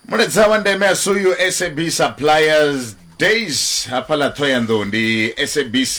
muledza wa ndeme a suyu sab suppliers days hafha ḽa thohoyanḓou ndi sabc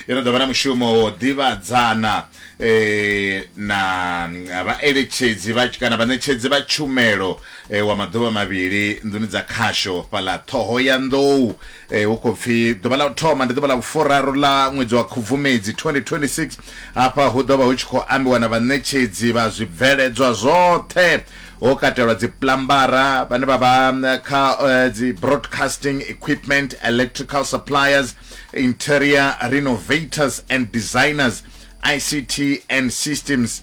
yo no ḓo vha na mushumo wo ḓivhadzana eh, na mm, vhaeletshedzi vha kana vhaṋetshedzi vha tshumelo eh, wa maḓuvha mavhili nḓuni dza khasho fhaḽa ṱhohoyanḓou Ee, hu khou pfi ḓuvha ḽa u thoma ndi ḓuvha ḽa vhufuraru ḽa ṅwedzi wa Khubvumedzi 2026. Afha hu ḓo vha hu tshi khou ambiwa na vhaṋetshedzi vha zwibveledzwa zwoṱhe ho katelwa dzipuḽambara, vhane vha vha kha dzi broadcasting equipment, electrical suppliers, interior renovators and designers, ICT and systems,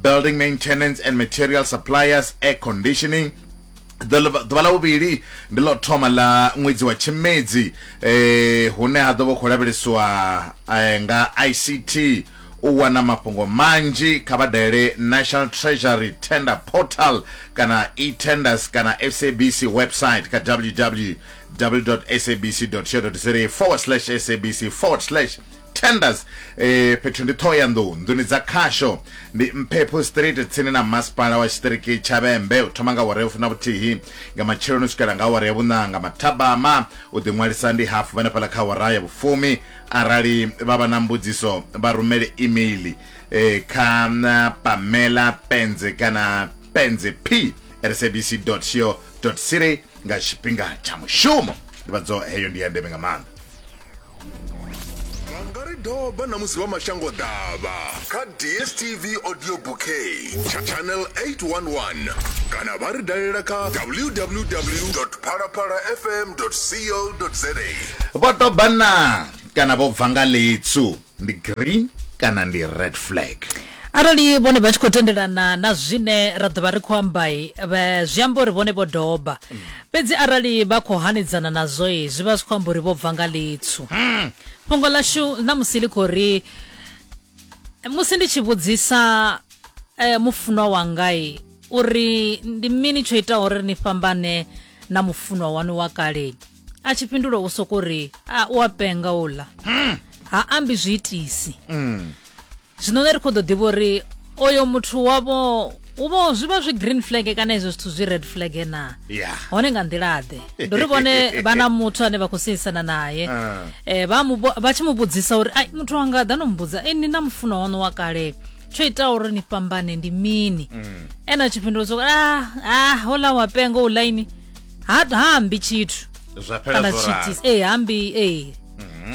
building maintenance and material suppliers, air conditioning, ḓuvha ḽa vhuvhili ndi ḽo thoma ḽa ṅwedzi wa tshimedzi eh hune ha ḓo vha khou lavhelesiwa eh, nga ICT u wana mafhungo manzhi kha vha dalele National Treasury Tender Portal kana e-tenders kana SABC website kha www.sabc.co.za forward slash sabc forward slash tenders eh fhethu ndi thohoyanḓou nḓuni dza khasho ndi mphepho street tsini na masipala wa tshiṱiriki tsha vhembe u thoma nga awara ya funa vhuthihi nga matsheloni u swikela nga awara ya vhuṋa nga mathabama u ḓiṅwalisa ndi hafu vhenefhaḽa kha awara ya vhufumi arali vha vha na mbudziso vha rumele email eh, kha na pamela penze kana penze p sabc co za nga tshifhinga tsha mushumo ndivhadzo heyo ndi ya ndeme nga maanḓa vha nga ri doba na musi vha mashango ḓavha kha dstv audio bouquet tsha channel 811 kana vha ri dalela kha www phalaphala fm co za vho ḓoba na kana vho bva nga ḽitsu ndi green kana ndi red flag arali vhone vha tshi khou tendelana na zwine ra ḓo vha ri khou ambai vha- zwi amba uri vhone vho doba fhedzi arali vha khou hanedzana nazwo i zwi vha zwi khou amba uri vho bva nga litswu fhungo ḽashu na musi ḽi khou ri musi ndi tshi vhudzisa eh, mufunwa wangai uri ndi mini tsho itaho uri ni fhambane na mufunwa wanu wa kale a tshi fhindula u soko ri a u a penga uḽa ha ambi zwi itisi zwino ne ri khou ḓo ḓivha uri oyo muthu wavho u vho zwi vha zwi green flag kana izwo zwithu zwi red flag na Yeah. hone nga nḓila-ḓe ndi uri vhone vha na muthu ane vha khou seisana naye Ah. eh, vha mu vho- vha tshi mu vhudzisa uri ai muthu wanga ḓa no mu vhudza e ni na mufunwa waṋu wa kale tsho itaho uri ni fhambane ndi mini ene a tshi fhindula soko ah ah hola wa penga u laini ha ha ambi tshithu zwa fhela kana zwo ralo tshiitisi ee ha ambi ee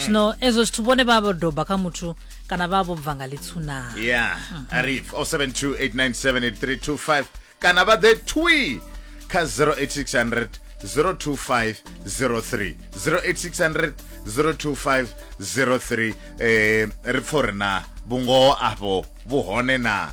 zwino ezwo zwithu vhone vha vho doba kha muthu kana vha vho bva nga litsunaa yeah arif 0728978325 kana vha ḓe twi kha 08600 02503 08600 02503 eh ri pfore na vhungoho afho vhuhone na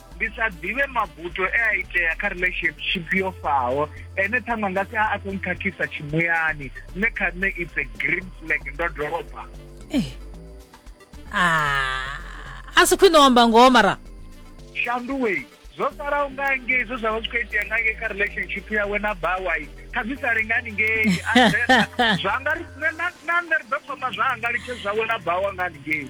ndi sa ḓivhe mabuto e a itea kha relationship yo faho ene ṱhaṅwe nga si a a khou nkhakhisa tshimuyani nṋe kha nṋe it's a green flag ndo doba eh. ah, a si khwine wamba ngoho mara shanduwei zwo salaho nga ngei zwo zwa vha zwi khou itea nga ngei kha relationship yawe na bawai kha zwi sa lingani ngei zwanga na nṋe ri ḓo thoma zwanga litshe zwawe na bawa nga ngei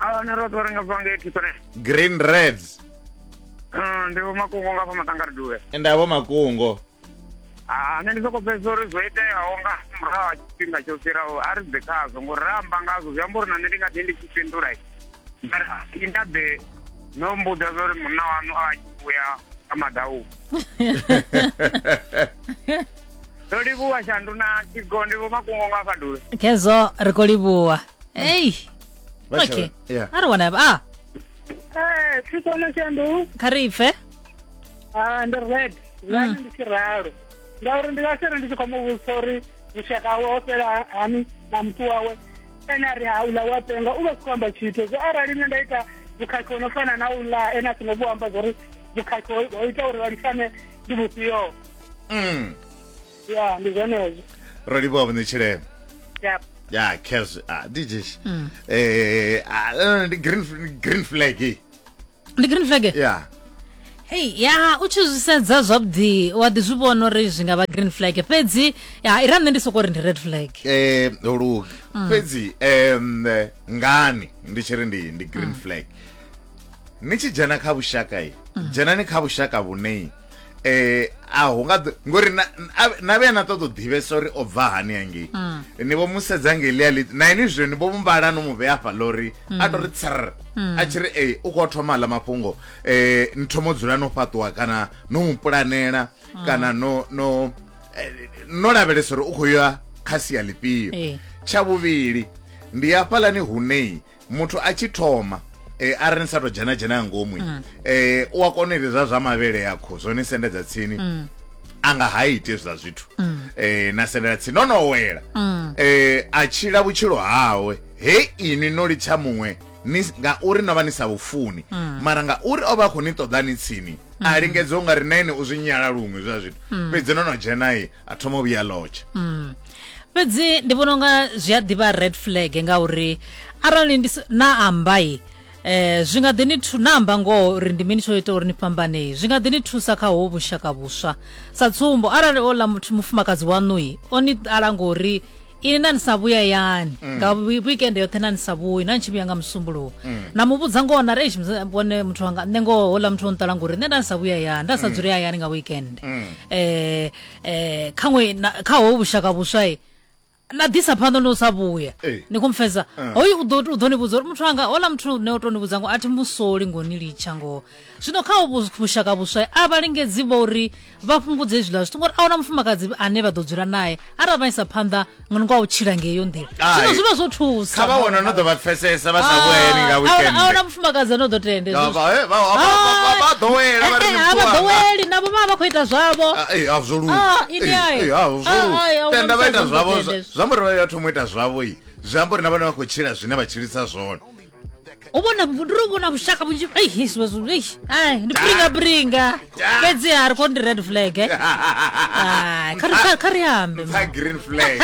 ahone ro ḓo renga banga eighty three green reds Mm, ndi vhomakungo nga fha maṱangaridule ende avho makungo Ah, nṋe ndi soko pfesa uri zwo iteaho nga murahu ha tshifhinga tsho fhiraho a ri bve khazwo ngori ra amba ngazwo zwi amba uri na nṋe ndi nga ḓi ndi tshi fhindula mara i nda ḓe no mbudza zwa uri munna wanu a tshi vhuya a madau ndo livhuwa shandu na tshigo ndi vhomakungo nga fadule khezwo ri khou livhuwa ei Vha okay Sharon. Yeah. a ri wana ba a Eh, thi kona shandu kha ri pfe ah ndi red zani ndi tshi ralo ngauri ndi nga sere ndi tshi khou mu vhudzisa uri vhushaka hawe ho fhela hani na muthu wawe ene a ri ha uḽa wa penga u vha si khou amba tshithu zwo arali nṋe nda ita vhukhakhi ho no fana na uḽa ene a songo vhu amba zwo ri vhukhakhi ho ho ita uri vha lifane ndi vhufhio Mm. ya ndi zwenezwo ro livhuwa vhuṋe tshilema ya ya khezwi a ndi jeshi um ndi green f- green flag eh. ndi green flag ya hei ya u tshi zwi sedza zwavhuḓi wa ḓi zwi vhona uri zwi nga vha green flag fhedzi ya ira nṋe ndi soko ri ndi red flag eh lugi fhedzi em eh, ngani ndi tshi ri ndi ndi green flag ni tshi dzhena kha vhushaka i dzhenani kha vhushaka vhune eh a hu nga ngori na na vhe na ṱoḓo ḓivhesa uri o bva hani hangei mm. ni vho musedza ngelia li na ini zwe ni vho mumbala no mu vhea fha lori mm. a tori tsr mm. a tshiri eh u kho thoma la mafhungo eh ni thomo dzula no fhaṱuwa kana no mu pulanela kana no no eh, no lavhelesa uri u kho ya kha sia lifhio eh. tsha vhuvhili ndi hafhalani hunei muthu a tshi thoma eh, a ri ni sa to dzhena dzhena ya ngomu mm. eh, u a kona ite zwa zwa mavhele ya kho zwo ni sendedza tsini mm. a nga ha ite zwa zwithu mm. eh, na sendela tsini no no wela mm. eh, a tshila vhutshilo hawe he ini no litsha muṅwe ngauri no vha ni sa vhufuni mm. mara ngauri o vha khou ni ṱoḓa ni tsini a mm. lingedza u nga ri na ene u zwi nyala luṅwe zwa zwithu mm. fhedzi no no dzhenai a thoma u vhuya lodge mm. fhedzi ndi vhona unga zwi a ḓivha red flag ngauri arali ndi na ambai eh zwi nga ḓi ni thu na amba ngoho uri ndi mini tsho ita uri ni fhambane zwi nga ḓi ni thusa kha ho vhushaka vhuswa sa tsumbo arali o ḽa muthu mufumakadzi waṋui o ni ṱala ngori ini nani sa vhuya yani nga wi- weekend yoṱhe nani sa vhuyi nani tshi vhuya nga musumbuluwo na mu vhudza ngoho na reish vhone muthu wanga nṋe ngoho houḽa muthu o nṱala ngori nṋe nda ni sa vhuya yani nda sa dzule hayani nga weekend eh eh khaṅwe na- kha ho vhushaka vhuswa i na ḓisa phanḓa ndi u sa vhuya Eh. ni khomfhedza hoyu u ḓo u ḓo ni vhudza uri muthu wanga houḽa muthu ne o tou ni vhudza ngo a thi musoli ngo ni litsha ngoho zwino kha ho vhu- vhushaka vhuswa a vha lingedzi vho uri vha fhungudze hezwiḽa zwithu ngori a huna mufumakadzi ane vha ḓo dzula naye arali vha isa phanḓa nga u tshila ngeyo nḓila zwino zwi vha zwo thusa kha vha wana no ḓo vha pfesesa vha sa vhueni nga weekend a huna mufumakadzi ane o ḓo tende vha ḓowela vha ri ni vha ḓoweli navho vha vha khou ita zwavho absolute tenda vha ita zwavho zwa muri vha ya thoma u ita zwavho zwi amba uri na vhone vha khou tshila zwine vha tshilisa zwone u vhona ndi ri u vhona vhushaka vhunzhi ei hisiwe zwithu ei ai ndi bringa bringa fhedzi ha ri kho ndi red flag eh ai kha ri kha- kha ri ambe ma. Tha green flag.